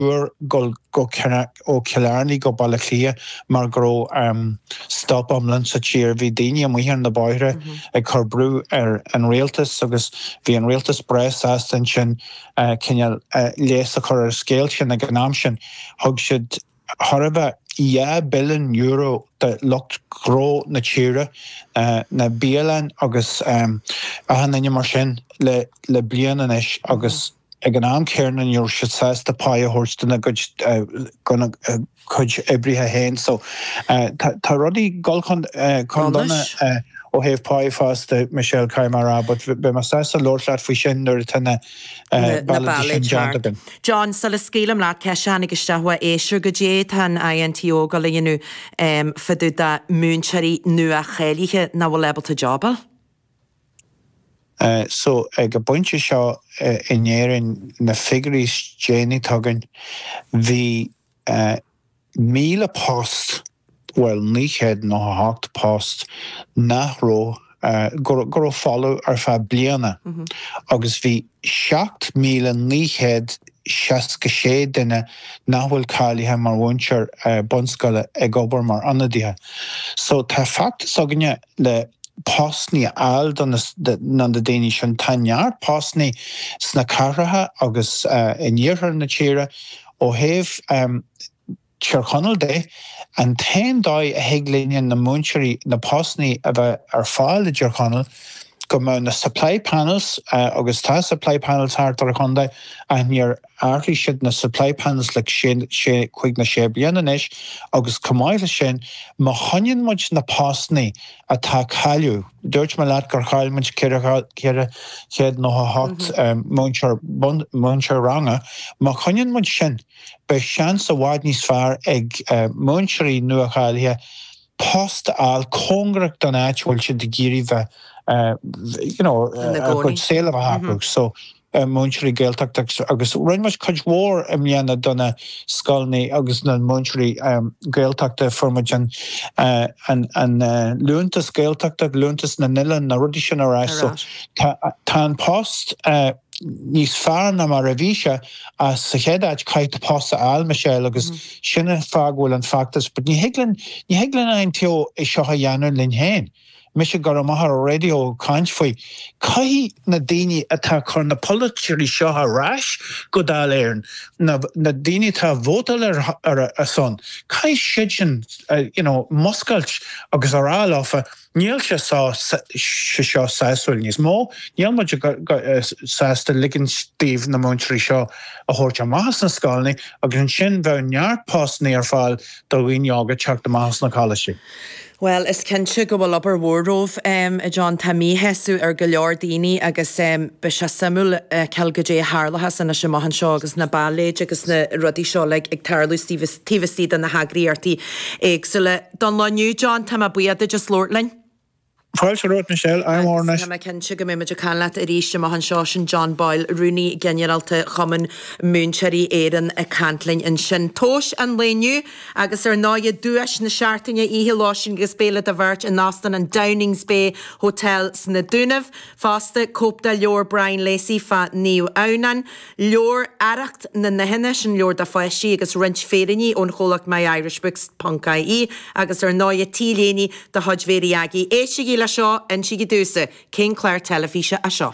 uair dhul ó Chill Airne go Baile Átha Cliath mar go raibh stop iomlán sa tír, bhí daoine amuigh ar na bóithre ag cur brú ar an rialtas agus bhí an rialtas breá sásta ansin cineál leigheas a chur ar an scéal sin. Ag an am sin thug siad thar, you know, dhá billiún euro do lucht gnó na tíre, na bialann agus achan duine mar sin le bliain anois agus, Ag an am céanna ní raibh siad sásta pá a thabhairt dona gcuid oibrithe féin. So tá rudaí ag dul chun donais ó thaobh páí fosta, Michelle, ceann mór, but beidh mé sásta a labhairt leat faoi sin nuair atá na bealaí sin déanta againn. John, sula scaoilim leat ceist a tháinig isteach ó éisteoir, goidé tá an INTO ag gabháil a dhéanamh fá dtaobh de múinteoirí nua-cháilithe nach bhfuil ábalta jab a fháil. So, ag an bpointe seo in Éirinn, na figiúirí is déanaí atá againn, bhí 1,000 post, bhuel, 998 post nach raibh, go raibh folamh ar feadh bliana agus bhí 7,966 duine nach bhfuil cáilithe mar mhúinteoir bunscoile ag obair mar ionadaithe. So, tá feachtas againne. le postannaí a fháil do na daoine sin. Tá neart postannaí sna cathracha agus in iarthar na tíre. Ó thaobh Thír Chonaill de, an t-aon dóigh a thig linne na múinteoirí, na postannaí a bheith ar fáil i dTír Chonaill, go mbeadh na supply panels, agus tá supply panels thart ar an chontae, ach níor. Ardaigh siad na supply panels le cúig nó sé bliana anois agus chomh maith leis sin, má choinníonn muid na postannaí atá á gcailleadh, dúirt mé leat gur chaill muid 498 múinteoir ranga, má choinníonn muid sin, beidh seans i bhfad níos fearr ag múinteoirí nua-cháilithe post a fháil cóngarach don áit a bhfuil siad ag iarraidh bheith, you know, a gcuid saol a bheith acu. múinteoirí Gaeltachta agus rinne muid cuid mhór i mbliana do na scoileanna agus na múinteoirí Gaeltachta. Fuair muid an liúntas Gaeltachta, liúntas na n-oileán, na rudaí sin ar ais. So tá an post níos fearr ná mar a bhí sé ach sa chéad áit caithfidh tú post a fháil, Michelle, agus sin an fáth go bhfuil an feachtas. But ní thig linn, ní thig linn an INTO seo a dhéanamh linn féin. mise go raibh maith ar an raidió ag caint faoi, caithfidh na daoine atá ag cur na polaiteoirí seo ar ais go Dáil Éireann, na daoine atá ag vótáil ar a son, caithfidh siadsan you know múscailt agus a rá leofa níl sé seo sásúil níos mó, níl muid sásta ligint daoibh na múinteoirí seo a thabhairt amach as na scoileanna agus ansin bheadh neart postannaí ar fáil do dhaoine óga teacht amach as na coláistí. Bhuel, is cinnte go bhfuil obair mhór romhaibh, em, a John, tá míshásamh ar go leor daoine agus, em, beidh sé suimiúil a fheiceáil goidé a tharlathas anois amach anseo agus na bailéid agus na rudaí seo, like, ag tarlú taobh, taobh istigh de na heagraíochtaí éagsúla. Don lá inniu, John, tá mé buíoch duit as labhairt linn. Fáilte romhat, Michelle. Agus tá mé cinnte go mbeidh muid ag caint leat arís amach anseo, sin John Boyle, Rúnaí Ginearálta Chumann Múinteoirí Éireann ag caint linn ansin. Tomhas an lae inniu. Agus ar ndóighe, duais na seachtaine, oíche lóistín agus béile do bheirt in Óstán an Downings Bay Hotel sna Dúnaibh. Fosta, cóip de leabhar Brian Lacey fá Naomh Adhamhnán, leabhar Arracht na nUidhean, leis an leabhar do pháistí, agus roinnt féiríní ón chomhlacht myirishbooks ponc ie, agus ar ndóighe, t-léine de chuid Mhary Aggie. Éistigí le seo! Insigí domhsa, cén clár teilifíse é seo?